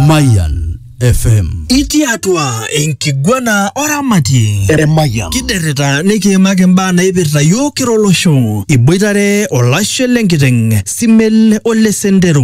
Mayan FM. Itii atua enkiguana oramatie. Eremayian. Kiderrita nikiimaki imbaa naipirta yiok kira olosho. Iboitare olashe lenkiteng, Simel ole sendero.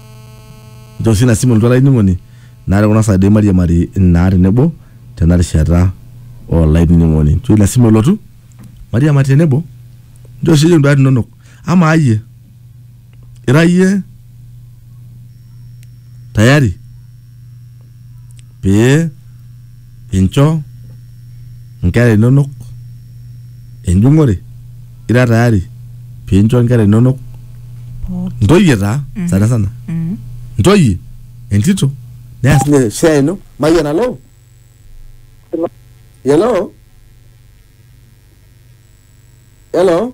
Nchoo sii ina simu elotu olainining'oni naa te kuna saai doi mairiamari naa tenebo tena rishata olainining'oni. Nchoo ina simu elotu mairiamari tenebo. Nchoo sii iyie induat inonok. Amaa iyie, ira iyie tayari pee inchoo inkera inonok enjung'ore ira tayari pincho inkera inonok pooki ntoyie taa sana sana Mm. ntoyie entito neas ninye share ino mayian alo hello hello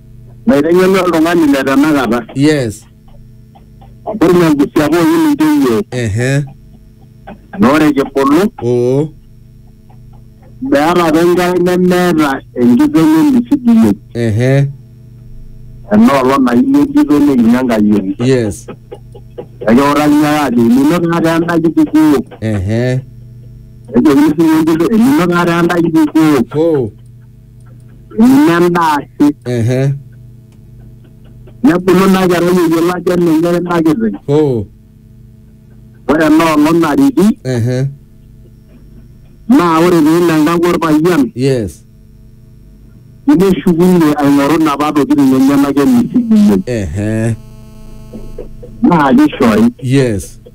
Naiteng'enu oltung'ani le tanakata. yes Ore ina kisha pookin intoiwuo ehe na ore kibulu oo meeta apa enkerai nemeeta enkiteng emisidiyie. ehe Enoolong naini entito neini enkayioni. yes Ekiutaki ake ajo enino taata enda kitukuo. ehe Nejokini sii ninye entito enino taata enda kitukuo. hoo Ina endaa si. ehe Nebulu ina kerai eyiolo ajo enenye ina kiteng. oh Ore ena olong nariki ehe naa ore pee elo enkang orpayian yes neshukunye aing'oru inapa tokitin enyenak emisikinyei ehe naa kishori. yes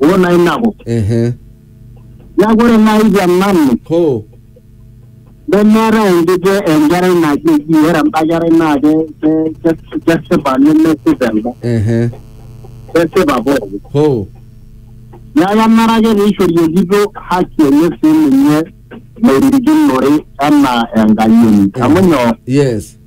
wona inako ehe neaku ore naaji te nanu ho nemeetae entito enkerai najoki ore enda kerai naa ke- ke- ke- kesipa nemesipa enda ehe kesipa pooki ho neaku enare ake peishori entito haki enye sii ninye nairirikinore enaa enkayioni amu nyoo yes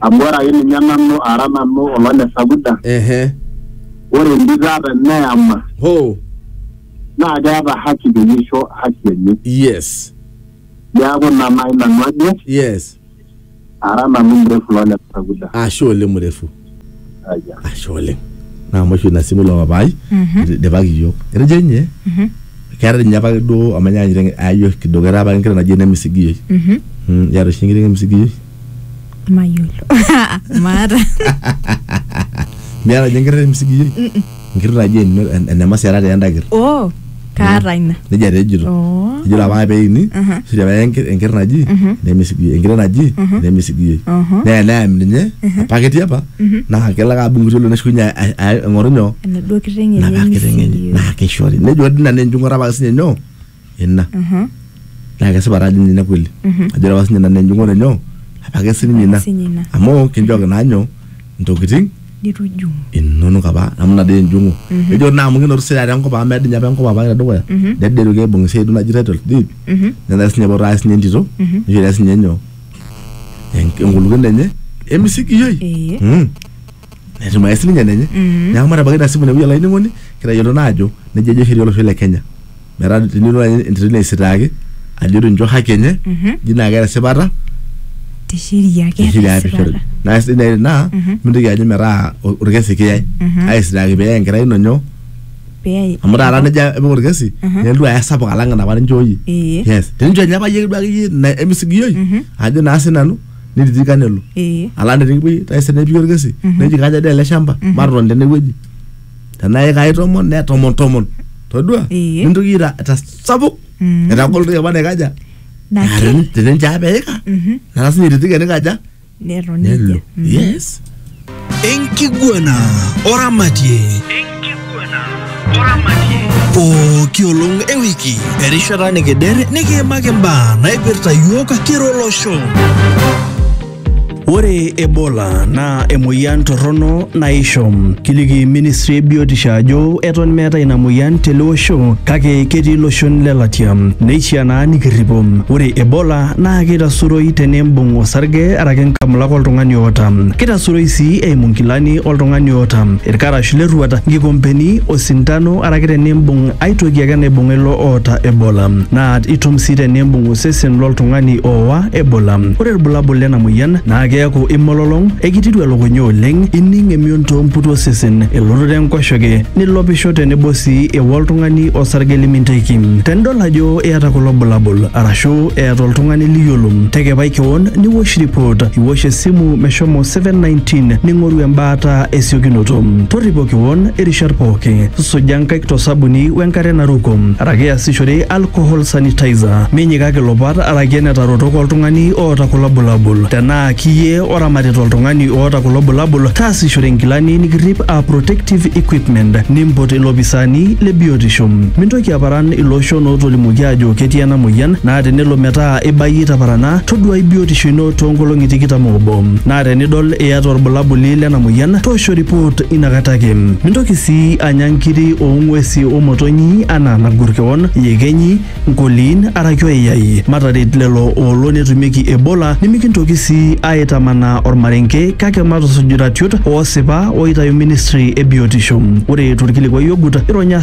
amu ore ake ninye nanu ara nanu olole sakuda ehe ore entito ata eneyama ho naa keeta haki peyie isho haki enye yes neeku ina naaji nanu ajo yes ara nanu mrefu lole sakuda ashe ole mrefu ashe oleng naa amu oshi ina simu ilo papai idipaki iyiok etejo ninye keeta ninye apake duo amu enyaanyita enke- ayayio kidogo etaa apake enkiteng naji enemisigioi Mm, iyata oshi enkiteng emisigioi mayiolo maata miata ninye enkiteng emisigioi Enkirt naji eno- en- enemasiara taa enda kirt. oh kaata ina Nejia taa ejito. Oh. Ejo ore apa peini, Aha. ejo apa enker- enker naji, nemesigiyoi. Enkiteng naji, nemesigiyoi. Aha. Neya neyam ninye, apa ketii apa, naa kelo ake adung' irkuti olong'i neshukunye a- a- a- aing'oru nyoo? enaduo kiteng enye napa kiteng enye. nemesigiyoi. Naa keishori. Nejo ore ina naa enjung'ore apa ake sinye nyoo? ina naa kesipa taa ajo ninye ina kweli ajo ore apa sinye ina naa enjung'ore nyoo apake sininye ina Sinye ina. amu kinchooki naa nyoo intokiting nitu ijung inonok apa amu ina dii enjung'u ejo naa amu kinoto sii taata enkop amu meedo ninye apa enkop apa tedukuya needo aitoki aibung esiai duo naji title deed netaa sinye epoito aaya sinye entito nishori ake sinye nyoo enk- enkulukoni enye emisikioi Ee. Mm. netumae sininye enenye mm-hmm. neeku matabaiki ina simu inewueji olainining'oni kitayiolo naa ajo nejia ejo sheria olosho le kenya metaa tenilo entito ino aisitaaki ajo tincho haki enye ji mm-hmm. naa keeta esipata tesheria pishori naa sidai nai naa mm-hmm. mintoki ajo metaa orkesi kiyai aisitaaki peyai enkerai ino nyoo amu taata nejia epik orkesi nelotu aya sapuk alang enapa ninchooyie yes tenincho enye apa yie duake yie emisigioi ajo naa sinanu nititika nelo ee alang tenikipuoi taisere nepiki orkesi neji kaja dee ele shamba matotoni tenewueji tenaa ikai tomon ne tomon tomon todua Ee. nintoki ira tasapuk Mm. etagol toki apa naikaja naki teninche apa eika Mhm. nara sinye ititika nikaja netoni nelo nejia. Mhm. yes Enkiguana oramatie. Enkiguana oramatie. Pooki olong e wiki, erishata nikider nikiimaki imbaa naipirta iyiook kira olosho. Ore Ebola naa emoyian torrono naisho. Kiliki ministry e biotisho ajo eton meetae ina moyian tele osho kake ketii iloshon lelatia. Neishiaa naa nikirripo. Ore Ebola naa keitasuroi teneimbung osarge araki nkamulak oltung'ani oota. Keitasuroi sii eimu nkilani oltung'ani oota, ilkarash le rruat, nkikompeni, osintano araki teneimbung ai toki ake naibung'a ilo oota Ebola. Naa itum sii teneimbung osesen lo ltung'ani oowa Ebola. Ore ilbulabul lena moyian naa keaku imololong, eikitiru elukunya oleng, ining emion too mputi osesen, elototo enkoshoke, nilopisho tenebo sii ewa oltung'ani osarge liminteki. Tenidol ajo eata kulo bulabul arashu eata oltung'ani liyiolo, tekepai kewon niwosh ripot, iwosh esimu meshomo 719 ning'oru embaata esiokinoto. Torripo kewon irishat pooki, suja nkaik to sabuni we nkare naruko araki iasishore alcohol sanitizer. Minyikaki ilopat araki enetarotok oltung'ani oota kulo bulabul. Tenaa kiyie oramatita oltung'ani oota kulo bulabul, taasishore nkilani nikirrip aa protective equipment. Nimpot ilopisaani le biotisho. Mintoki aparan ilo biotisho nootolimuoki aajo ketii ena moyian naa tenelo metaa ibayie itaparana, toduaai biotisho ino too nkolong'i tikitam oobo. Naa tenidol iyata olbulabuli lena moyian, toosho ripoot ina kata ake. Mintoki sii anya nkiri oo ng'uesi o motonyi anaa nagor kewon, iyekenyi, nkoliin araki oyayai. Mataret lelo oolo netumieki Ebola nimikintoki sii aaitamanaa olmarenke kake matusuj iratiot oosipa ooitayu ministri e biotisho. Ore to lkilikuai ogut, ironya